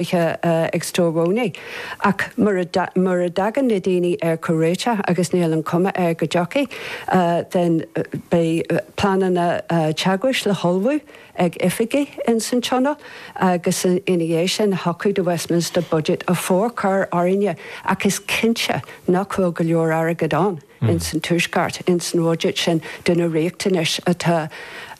oíche ag Stormont ach mura dtagann na daoine ar chomhréiteach agus níl an chuma air go dtiocfaidh, then beidh pleananna teagmhais le hullmhú ag oifigigh ins an Tionól agus ina dhiaidh sin thiocfadh do Westminster Budget a forchur orainne ach is cinnte nach bhfuil go leor airgid ann. ins an tuaisceart, ins an bhuiséad sin do na riachtanais atá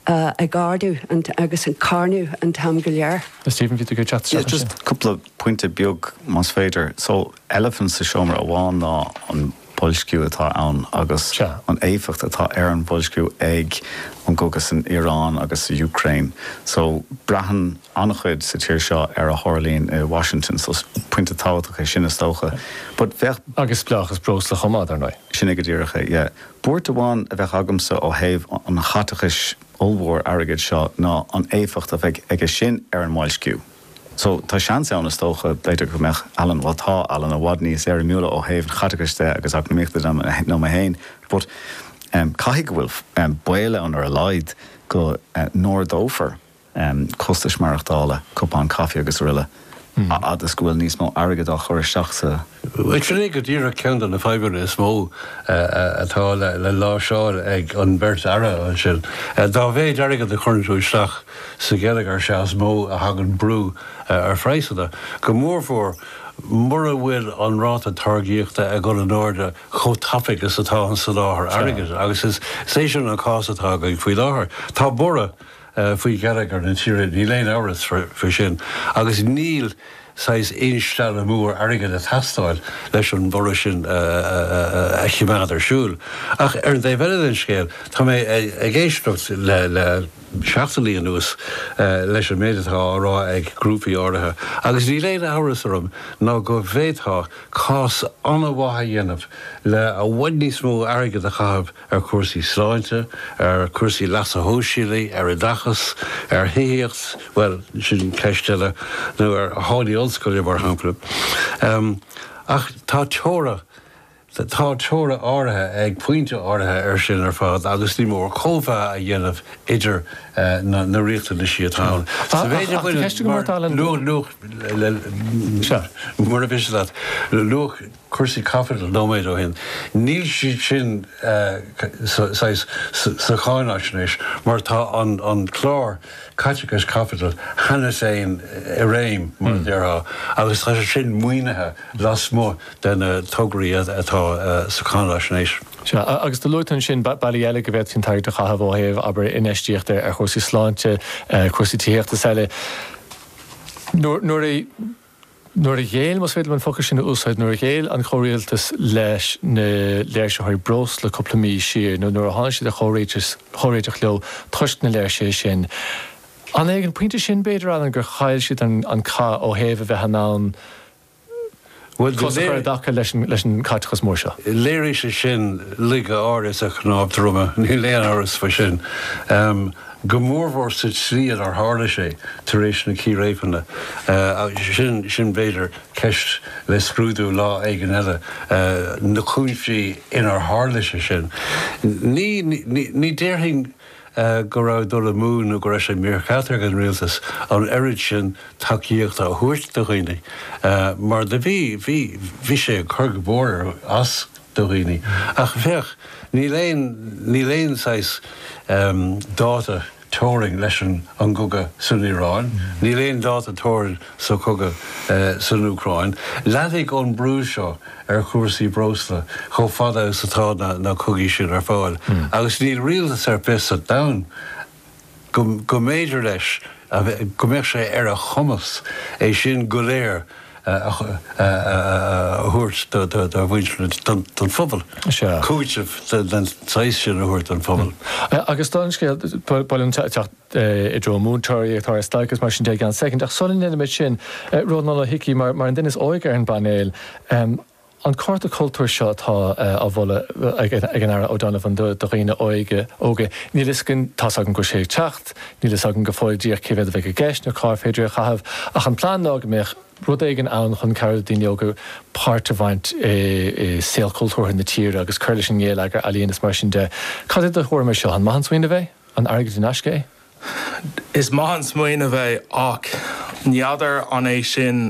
ag ardú agus ag carnadh an t-am go léir. Stephen, bhí tú ag teacht isteach ansin. Just cúpla pointe beag más féidir. So, elephant sa seomra amháin ná an boilsciú atá ann agus an éifeacht atá ar an bhoilsciú ag an gcogadh san Iaráin agus san Úcráin. So, braitheann. an-chuid sa tír seo ar a tharlaíonn i Washington so is pointe tábhachtach é sin is dócha but. Agus spleáchas breosla chomh maith, dar ndóigh. Sin é go díreach é, yeah. Buairt amháin a bheadh agamsa ó thaobh an chaiteachais ollmhóir airgid seo ná an éifeacht a bheidh aige sin ar an mboilsciú. So, tá seans ann is dócha, b'fhéidir go mbeadh Alan, bhuel tá Alan i bhfad níos éirimiúla ó thaobh an chaiteachais de agus eacnamaíochta de ná mé féin but caithfidh go bhfuil baol ann ar a laghad go n-ardófar costais maireachtála, cupán caife agus araile, a fhad is go bhfuil níos mó airgid á chur isteach sa. Sin é go díreach ceann de na fadhbanna is mó atá le láimhseáil ag an bheirt Aire ansin. Dá mhéid airgid a chuireann tú isteach sa gheilleagar is ea is mó a thagann brú ar phraghsanna, go mórmhór mura bhfuil an ráta táirgíochta ag dul in airde chomh tapaidh is atá an soláthar airgid agus is é sin an cás atá againn faoi láthair. Tá borradh. faoi gheilleagar na tíre, níl aon amhras faoi sin, agus níl saghas instealladh mór airgid ag teastáil leis an bhorradh sin a choimeád ar siúl. Ach ar an dtaobh eile den scéal, tá mé ag éisteacht le seachtainí anuas leis an méid atá á rá ag grúpaí áirithe agus níl aon amhras orm ná go bhféadfá cás an-mhaith a dhéanamh le i bhfad níos mó airgid a chaitheamh ar chúrsaí sláinte, ar chúrsaí leasa shóisialaigh, ar oideachas, ar thithíocht, bhuel, sin ceist eile, nó ar tháillí ollscoile, mar shampla. Ach tá teora, tá teora áirithe ag pointe áirithe air sin ar fad agus ní mór cóimheá a dhéanamh idir na riachtanaisí atá ann. Sa mhéid a bhaineann, mar luach, cúrsaí caipitil nóiméad ó shin. Níl siad sin saghas sa cháinaisnéis mar tá an clár caiteachais caipitil cheana féin i réim, mar a déarfá, agus tá sé sin maoinithe lasmuigh de na tograí atá sa cháinaisnéis. Sea, agus dá luaitear ansin bealaí eile go bhféadfaí an t-airgead a chaitheamh ó thaobh abair infheistíocht ar chúrsaí sláinte, cúrsaí tithíochta is eile. Nuair a. nuair a ghéill, más féidir liom an focal sin a úsáid, nuair a ghéill an Comhrialtas leis na léirsitheoirí breosla cúpla mí siar, nuair a tháinig siad ar chomhréiteach leo toisc na léirsithe sin. An é ag an phointe sin, b'fhéidir, Alan, gur chaill siad an cath ó thaobh a bheith in ann cos a chur i dtaca leis an chaiteachas mór seo? Léirigh sé sin laige áirithe sa chnámh droma, níl aon amhras faoi sin. go mórmhór sa tslí inar tharla sé tar éis na círéibeanna. Sin, b'fhéidir, ceist le scrúdú lá éigin eile, na cúinsí inar tharla sé sin. Ní déarfainn go raibh dul amú nó go raibh sé mícheart ag an Rialtas an oiread sin tacaíochta a thabhairt do dhaoine, mar do bhí. Bhí sé ag cur go mór as. do dhaoine. Ach féach, níl aon, níl aon saghas ehm, dáta teorainn leis an, an gcogadh san Iaráin, níl aon dáta teorainn sa chogadh eh, san Úcráin. Leanfaidh an brú seo ar chúrsaí breosla chomh fada is atá na, na cogaí sin ar fáil. Agus níl rialtas ar bith sa domhan go mb'fhéidir leis go mbeadh sé ar a chumas é sin go léir a thabhairt dá mhuintir, don phobal, cúiteamh den saghas sin a thabhairt don phobal. Agus dála an scéil, ba mhaith liom teacht i dtreo múinteoirí ag dul ar stailc agus mar sin de i gceann soicind, ach sula ndéanaimid sin, Rónán Ó hIcí mar an duine is óige ar an bpainéal, An cárta cultúir seo atá á mholadh ag an Aire O'Donovan do dhaoine óga, níl a fhios againn, tá's agam go bhfuil sé ag teacht, níl a fhios againn go fóill díreach cé mhéad a bheidh i gceist nó cár féidir é a chaitheamh ach an plean ná go mbeadh rud éigin ann chun cabhrú le daoine óga páirt a bhaint i saol cultúrtha na tíre agus cur leis an ngéilleagar ealaíon is mar sin de. Cad é do thuairim air seo? An maith an smaoineamh é? An airgead in aisce é? Is maith an smaoineamh é ach n'fheadar an é sin